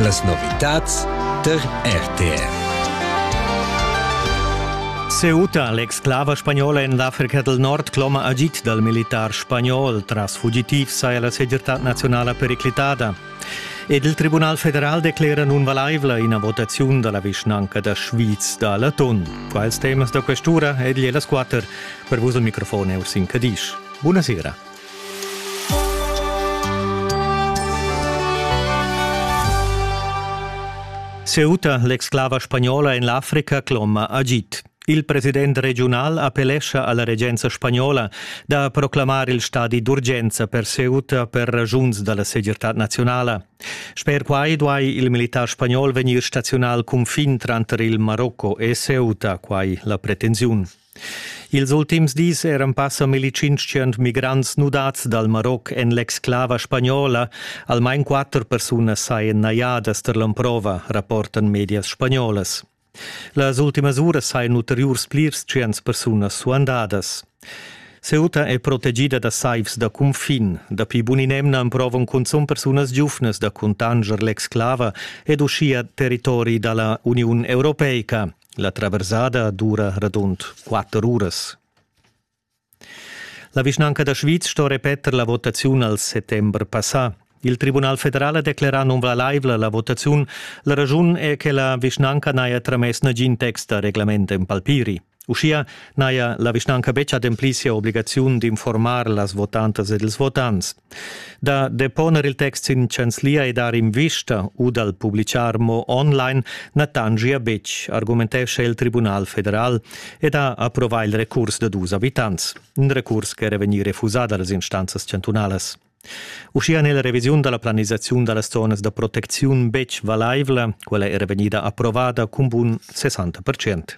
Las novitads tar RTR. Ceuta, l'exclava spagnola en l'Africa del Nord, cloma agit dal militar spagnol. Tras fugitiv saja la segirtad nazionala periclitada. Ed il Tribunal federal declera nun valaivla ina votaziun da la vischnanca da Schwyz da Laton. Quals temas da questura ed las quatter per vos al microfon è Ursin Cadisch. Buonasera. Ceuta, l'exclava spagnola en l'Africa, cloma agid. Il president regiunal appellescha alla regenza spagnola da proclamar il stadi d'urgenza per Ceuta per ragiuns dalla segirtad nazionala. Sper quai duai il militar spagnol vegnir staziunal cunfin tranter il Marocco e Ceuta, quai la pretensiun. Ils ultims dis eran passa milli-tschintschient migrants nudads dal Maroc en l'exclava spagnola. Almain quatter persunas sajan najadas tar l'emprova, rapportan medias spagnolas. Las ultimas uras sajan ulteriurs plirs tschients persunas suandadas. Ceuta è protegida da saivs da cunfin. Dapi bun'in'emna emprovan cunzunt persunas giuvnas da cuntanscher l'exclava ed uschia territori da la Uniun Europeica. La traversada dura radund quatter uras. La vischnanca da Schwyz sto repeter la votaziun al settember passà. Il Tribunal federal ha declerà nunvalaivla la votaziun. La raschun è che la vischnanca n'haja tramess nagin text da reglament en palpiri. Uschia n'haja la vischnanca betg ademplì sia obligaziun d'informar las votantas ed ils votants. Da deponer il text sin chanzlia e dar invista u dal publichar mo online na tangia betg, argumentescha il Tribunal federal ed ha approvà il recurs da dus abitants, in recurs ch'era vegnì refusà da las instanzas chantunalas. Uschia n'è la revisiun da la planisaziun da las zonas da protecziun betg valaivla, quella era vegnida approvada cun bun 60%.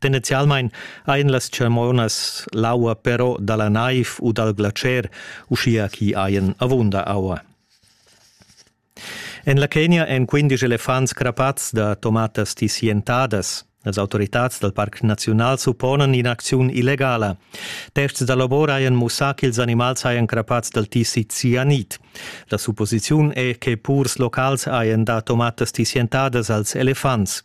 Tendenzialmein ein las tschemonas l'aua però dalla naiv u dal glatscher, uschia chi hajan avunda aua. En la Kenia èn quindisch elefants crapats da tomatas tissientadas. Las autoritads dal Parc Naziunal supponan in'acziun illegala. Terzs da labor hajan mussà ch'ils animals hajan crapats dal tissi cianid. La supposiziun è che purs locals hajan dà tomatas tissientadas als elefants.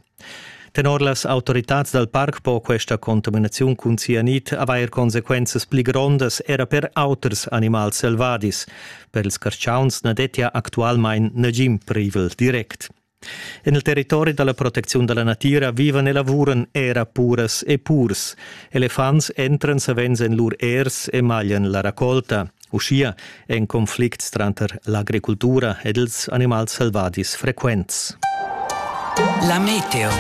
Tenor las autoritads dal parc po questa contaminaziun cun cianit avair consequenzas pli grondas era per auters animals selvadis. Per ils carschauns na dettia actualmain nagin privel direct. En il territori da la protecziun da la natira vivan e lavuran era puras e purs. Elefants entran savens en lur ers e maglian la racolta. Uschia è in conflict tranter l'agricultura ed ils animals selvadis frequents. La meteo.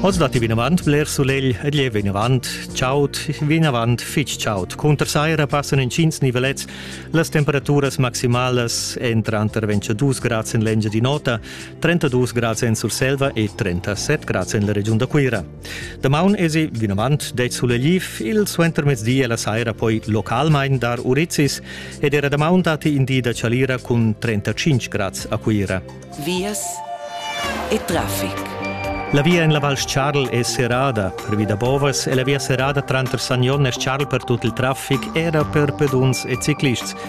Oz dat vinavant bler sulegl ed leu vinavant chaud, vinavant fitg chaud. Cunter saira passan intgins nivelets. Las temperaturas maximalas èn tranter 22 grads en l'Engiadin'Ota, 32 grads en Surselva e 37 grads en la regiun da Cuira. Damaun esi vinavant det suleliv il suentermezdi e la saira poi localmain dar urizis ed era damaun datti in di da chalira cun 35 grads a Cuira. Vias e traffic. La via en la Val Charl è serrada pervi da bovas e la via serrada tranter Sagnon e Charl per tut il traffic era per peduns e ciclists